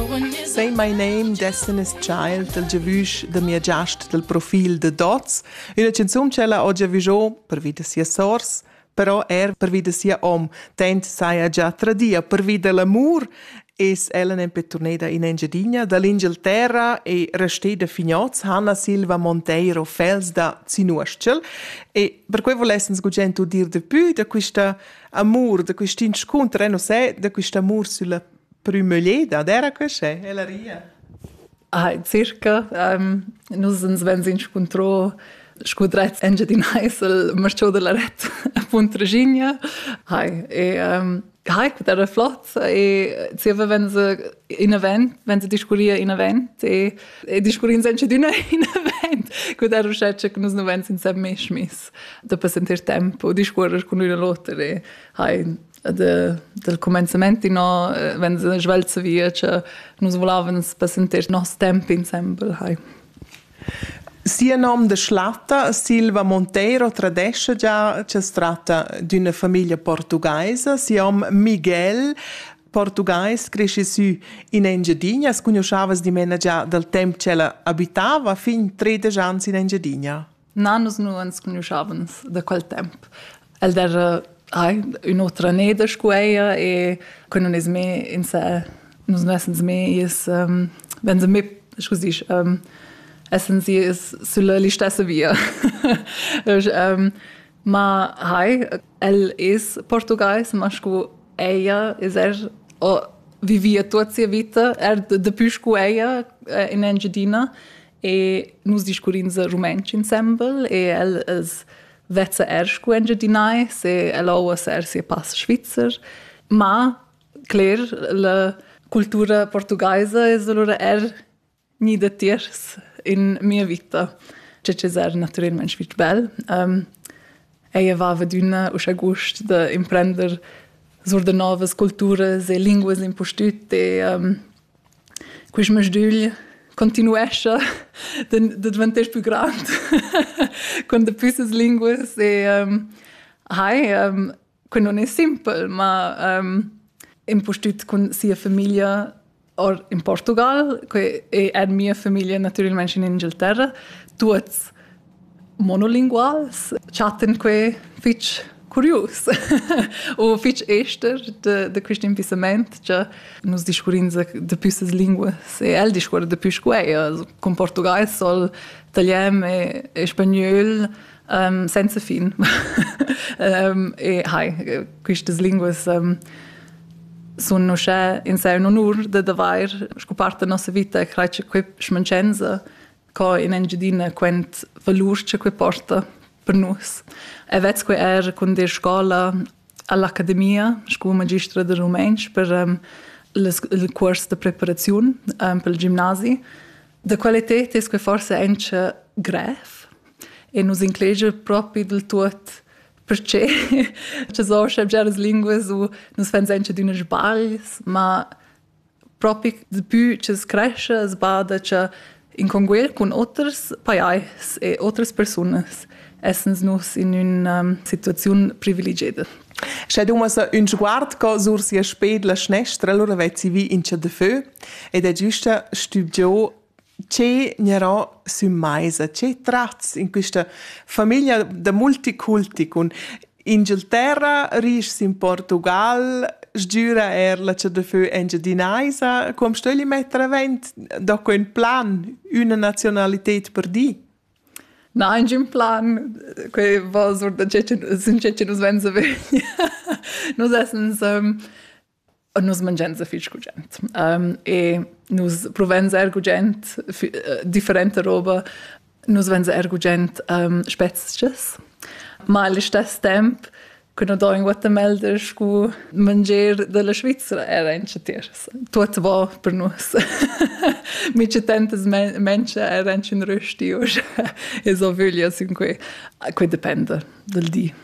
Say my name, Destiny's Child, dal giavüsch da mia giast dal profil da Dots, üna canzun ch'ella ho giavüscho pervi da sia sors, però er pervi da sia hom, tant saja già tradia pervi da l'amur, es ella nempe turneda in Engiadina dall'Inghilterra e resteda fignots Hanna Silva Monteiro Fels da Zinuostschel e per quei volessens gugent dir de pü da quista amur, da quist inscunter, eh, non sai, da quist amur sulla prümügleda d'eira quest'e, ella ria. Ah, circa. Um, nus ens vegns inscuntro scu drets Engiadin Heisel, marciò da la ret Puntraginia. Hai, e um, Hai, quet era flot e zieva wenn se in event, wenn se discurria in event e, e discurrins anche d'una in event, quet era uschè che nus nu vegns insem mesch miss da passentir tempo, discuorrer cun üna l'oter e hai de, del comenzamenti no eh, wenn se svelze via che nus volevem passentir nos temp insembel hai Sia nom de schlatta Silva Monteiro tradesce già che se tratta d'una famiglia portugaisa. Si hom Miguel portugais cresce su in Engiadina, as conoscavas dimena già dal temp che ella abitava fin 13 anni in Engiadina. Na, nus nu ans cugnuschavans da quel temp. El d'eira ai, ün'otra neda scu eir e que nun es mê insè, nus nu essans mê iis, ähm, vegns mê, scu disch, ähm, essans iis sülla listessa via. ähm, ma hai, el es portugais, ma scu eir es er o vivia tuot sia vita, er daplü scu eir in Engiadina e nus discurrins rumantsch insembel e el es vezza er scu engiadinai se el ouas er sia pass svizzer ma cler la cultura portugaisa es allura er ni da tiers in mia vita che es er natüralmente fich bel um, ella vava d'üna uschè gust da imprender sur da novas culturas e linguas impustüt e um, Quist masdügl continuescha da dvanter pü grand cun dapü ses linguas e hai que non es simpel, ma impustüt cun sia famiglia or in Portugal, que è mia famiglia natüralmaing in Inghilterra, tuots monolinguals chattan quei fitg curius u fitg ester de, de quest impissament che nus discurrins dapi ses linguas e el discuora dapi scueia cun portugais sol italian e, e spagnol um, senza fin um, e hai quistas linguas um, sun uschè in sé un onur da d'avair scu part da nossa vita e crai che quei schmancenza co in Engiadina quent valur che quei porta per nus. E vez quei er con de scola all'Accademia, sco magistra de rumentsch per um, il curs de preparazione um, per il gimnasi. Da qualità è quei forse anche grev e nos inclege proprio del tutto perché ci sono già le lingue su, nos fans anche di unes sbagls, ma propi dapü cha's crescha, as bada cha in conguel cun oters pajais e otras persunas essans nus in ün situaziun privilegieda. Sche dumasa ün sguard co sur sia sped la schnestra, allura vezzi vi in cha da fö ed ha giüsta stübgià che gnarò sü maisa, che tratts in quista famiglia da multiculti cun Inghilterra, rischs in Portugal, sgüra eir la CDFÖ engiadinaisa, com sto el metter avent da que ün plan, üna nazionalited per di? Na, ingün plan, que va sur da che nus venza vegn. Nus essens nus mangians fich gugent. Um, e nus provans eir gugent äh, differenta roba. Nus vans eir gugent um, spezchas, ma al istess temp che no do in Guatemala scu mangier della Svizzera era in chatiers. Tuot va per nus. Mi citantas mentsche era in rösti us e so vöglia sin que. Que depende del di.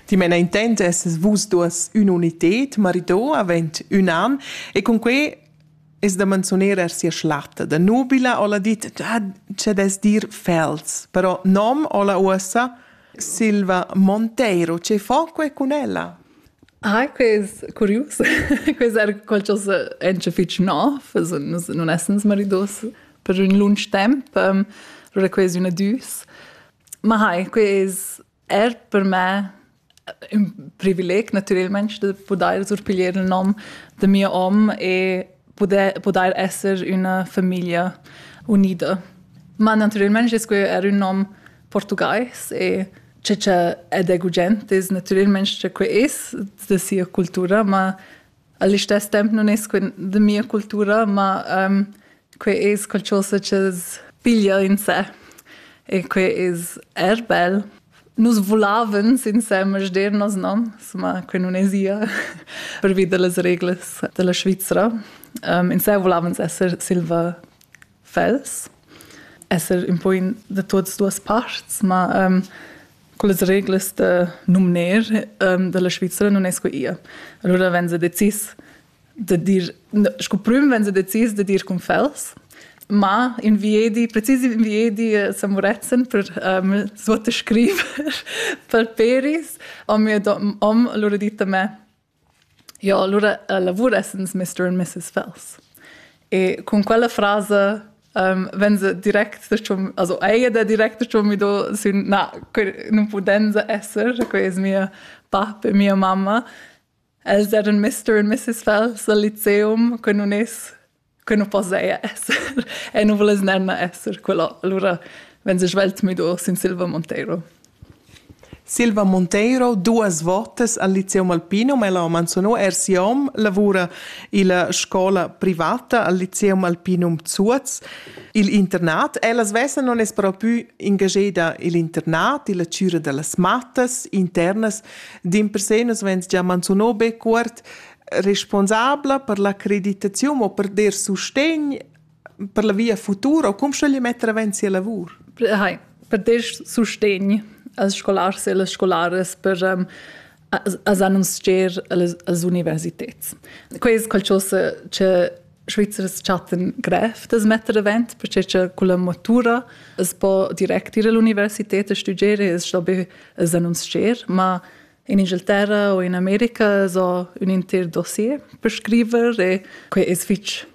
Dimena intent esses vus duas ün'united, marido avend ün an e cun quei es da manzuner er sia schlatta. Da nubila ho'la dit dad es dir Fels, però nom ho'la uossa Silva Monteiro. Che fo que cun ella? Ah, que es curius. que es er qualchos encha fich nov, es non essens maridos per ün lunch temp. Allura que es üna düs. Ma hai, que es er per me ün privileg natürelmaing da pudair surpiglier il nom da mia om e pudair pudair esser üna famiglia unida. Ma natürelmaing es quai eir ün nom portugais e che cha ed è gugent es natürelmaing cha que es da sia cultura, ma a listess temp nun es que da mia cultura, ma ehm que es qualchosa cha's piglia in sè e que es eir bel. Nus vulavans insemes dernos, no? Insomma, que nun esa pervi da las reglas da la Svizra. Ehm insè vulavans esser silva fels, esser ün po in da tuots duos parts, ma ehm Quelles reglas da numner um, dalla Svizra non es sco ia. Allora wenn se decis de dir sco prüm wenn se decis de dir con fels ma inviedi, precis inviedi eh, Samuretzen per um, svuote scriver per peris, om, om loro ditta me, Jo, alura lavur essens mister and missus Fells. E cun quella frasa vegn se direct dachomb, also eir da direct dachomb i do sün na, nun pudenza esser, quai es mia bap e mia mamma. Els eran mister and missus Fells al liceum, que nun es que nu po seja esser e nu vuless nemna esser quella. Alura vegn svelt müdo sin Silva Monteiro. Silva Monteiro, duas votas al Lyceum Alpino, ma ella ha manzunò er sia om, lavura illa scola privata al Lyceum Alpinum Zuoz. Il internat, ella svessa non es però pü ingageda il internat, illa chüra da las mattas internas, dimpersè nus vegns già manzunò be cuort responsabla per la creditaziun o per der sustegn per la via futura o cum schögli metter avanti sia lavur? Hai, per der sustegn als scolars e alle scolares per um, as annunzier als universitets. Quest qualcosa che Schweizers chatten grev das metter avant, perché che con la matura es po direct ir all'universität a studiare, es da be as annunzier, ma In Ingilterra u in America so ün inter dossier per scriver e quai es fich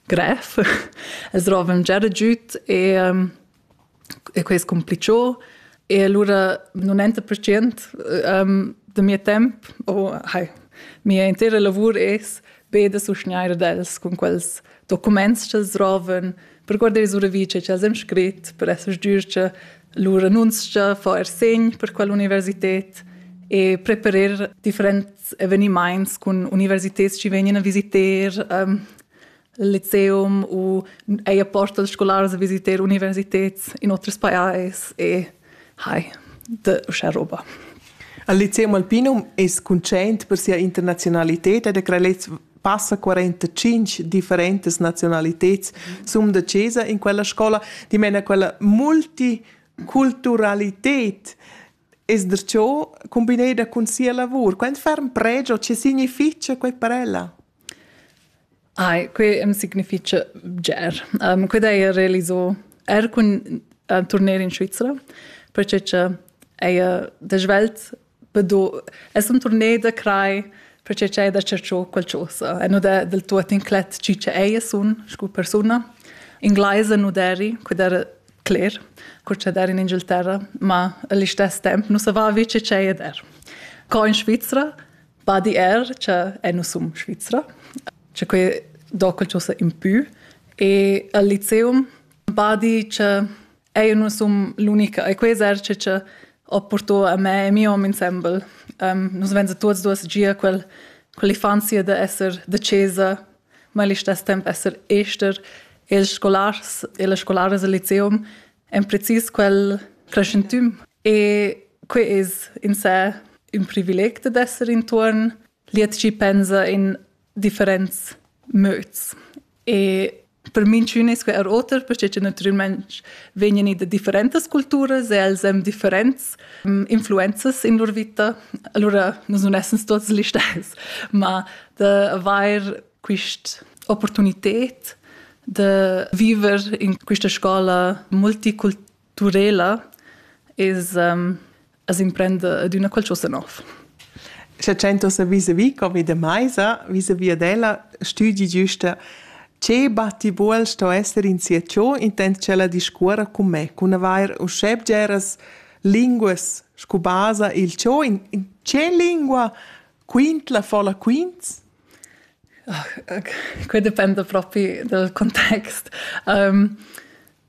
grev. Es rovan già giüt e, e quai es cumplichò. E alura 90% da mia temp o hai, mia intera lavur es be da susgnair d'els cun quels documents ch'els drovan, per guardar ils uravice ch'els han scrit, per esser sgür che lur annunzia fa er segn per quell'universität e preparer differents evenimaints cun universitets chi vegnan a visiter um, il lyceum u eir porta els scolars a visiter universitets in oters pajais e Hai, de uschè roba. Il lyceo Malpinum es cuntschaint per sia internaziunalità ed ha creà lez passa 45 differentas nazionaliteds sum da chesa in quella scola, dimena quella multiculturalität es der ciò combineda cun sia lavur. Quant ferm pregio, che significha quai per ella? Ai, que am significha bger. Um, quid haja realiso er cun uh, turner in Svizra, perche cha haja da svelt bedo... Es un turner da crai perche cha haja da cercho qualchosa. E nu da del tuot inclet chi cha haja sun scu persuna. Inglaisa nu deri, quid era cler, cur cha der in Inghilterra, ma all'istess temp nu savà vi che c'haja der. Co in Svizra, Badi er, che è nus sum Svizra, che quei docal chosa in pü e al liceum badi che è nus sum l'unica e quei eserce che ho porto a me e mio hom ensemble. Um, nus venza tuots duos gia quel quell'infanzia de esser de chesa, ma allo stesso tempo esser ester e il scolars e le scolares al liceum en precis quel crescentüm E quei es in sé ün privileg dad esser intuorn liet chi pensa in differents mods. E per minchün es que er oter, perche che natüralmaing vegnan i da differentas culturas e els hem differents mm, influenzas in lur vita. Allura nus nun essens tuots gli stes, ma da avair quist opportunited de viver in questa scola multiculturala Turela es, um, as imprenda adüna qualchosa nov. Scha tschentosa vis-à-vis covid maisa, vis-à-vis ad ella, stüdi güsta che batti buol sto esser in sia ciò intend ch'ella discuora con me, cun avair uschè bgeras linguas scu basa il ciò in, in che lingua quintla fola quints? Ah, quai dependa propi dal context. Um,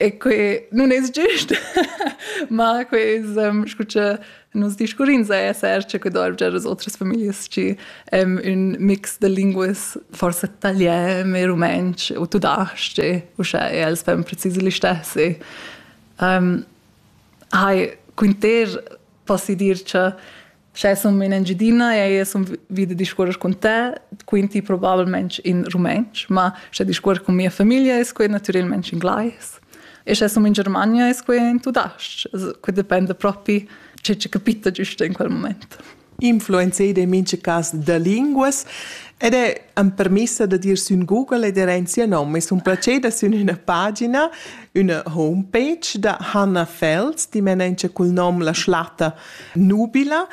E que nun es giust, ma que es ehm, scu cha nus discurrins eir seis cha que dovrgia a otras famiglias chi ehm ün mix da linguas forsa italian e rumantsch o tudasch-ch, uschè e els fan precis l'istessi. Ehm, hai, quinter posso dir cha Sche sun in Engiadina e sun vi da discuors cun te, quinti probabilmente in rumantsch, ma sche discuors cun mia famiglia es quai natüralmente in glais. E sche sun in Germania es quai in tudas-ch. Que dependa propi che che capita giusto in quel moment. Influenzaid in mincha cas da linguas ed è am permissa da dir sün Google ed era in sia nom. Es un placer da sün üna pagina, üna homepage da Hanna Fels, dimena cul nom La Schlatta nubila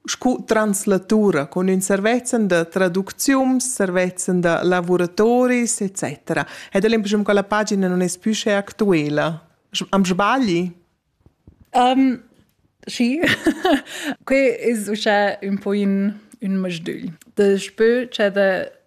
scu translatura con ün servezzan da traduczium, servezzan da lavuratoris, etc. Ed l'impressiun che la pagina non es pü sche actuela. Am sbagli? Um, sì, que es uschè ün po in, ün masdügl. Da spö c'è da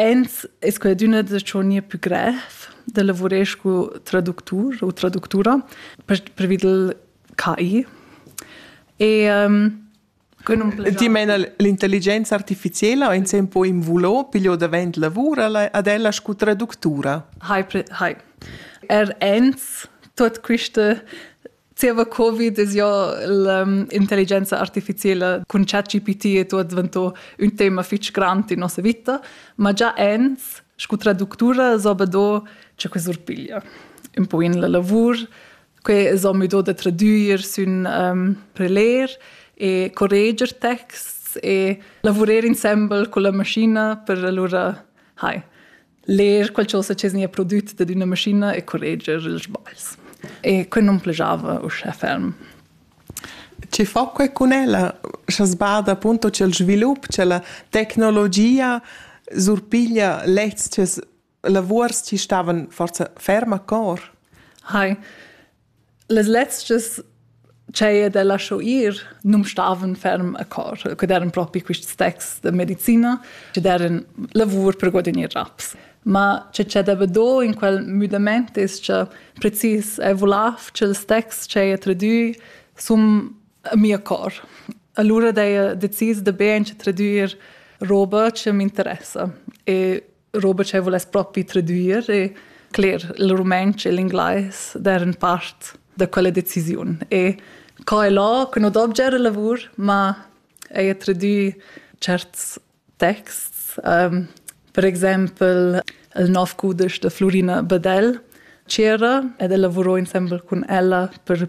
Ins es quadüna da tschonir pü grev, da lavurer scu traductur u traductura pervi dal KI. E Que nun plegia. Ti meina l'intelligenza artificiela in sem po invulo piglio davent lavura ad ella scu traductura? Hai, hai. Er ins tuot quiste Zieva Covid es jo l'intelligenza artificiela cun ChatGPT e tuot dvanto ün tema fich grand in nossa vita, ma già ins scu traductura s'ho be do cha que surpiglia ün po in la lavur. Que s'ho mü do da tradüer sün preler e correger texts e lavurer insembel culla mascina per alura, hai, leer qualcosa che nia prodüt dad üna maschina e correger ils sbagls. E quel non plajava uschè ferm. Ci fa que cun ella, scha sbada appunto c'è il svilup, c'è la tecnologia surpiglia lezs che lavuors ci stavan forza ferm a cor? Hai, Las letgs ch'haja da lascho ir nu'm stavan ferm a cor, que d'eran propi quists texts da medicina chi d'eran lavur per guadagner raps. Ma che cha deva do in quel müdamaint es cha precis eau vulaiv ch'ils texts ch'haja tradüi sun a mia cor. Alura d'haja decis da be auncha tradüer roba chi m'interessa e roba che voless propi tradüir e cler il rumantsch e l'inglais deren part da quella decisiun e co è là che no dobgia era lavur ma ei a tradüi certs texts um, per exempel il nov cudesch de Florina Badel c'era ed el lavurò insembel cun ella per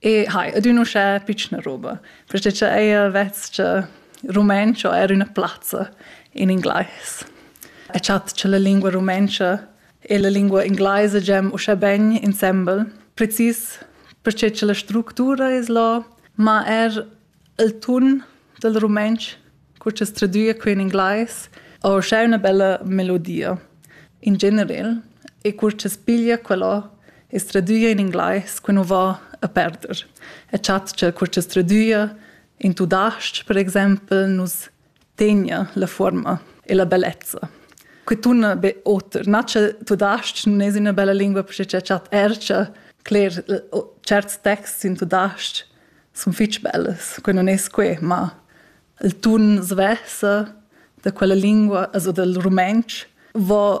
E hai, ed ün uschè pitschna roba. Perché cha eir vess-cha rumenscho eir üna plazza in inglais. E chat cha la lingua rumentscha e la lingua inglaisa gem uschè ben insembel, precis perché cha la structura es là, ma er il tun dal rumantsch, co cha's tradüa que in inglais, o scha üna bella melodia in generel e cur cha's piglia quella e's tradüa in inglais que nu va a perder. E chatschel cur cha's tradüa in tudas-ch per exaimpel nus tegna la forma e la bellezza. Que tunna be oter. Nace tudasc non es üna bella lingua perché cha chat ercia cler certs texts in tudasc sun fich bellas. Que non es que, ma il tun svessa da quella lingua, also dal rumentsch, va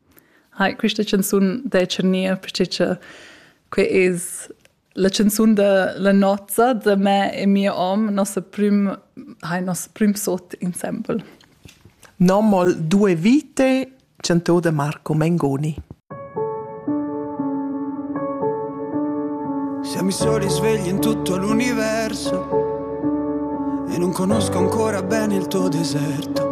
Hai, quista chanzun dai tschernir perche cha que es la chanzun da la nozza da me e mia om, nossa prüm hai, nos prüm sot insembel. Nomol Due vite chantò da Marco Mengoni. Siamo i soli svegli in tutto l'universo e non conosco ancora bene il tuo deserto.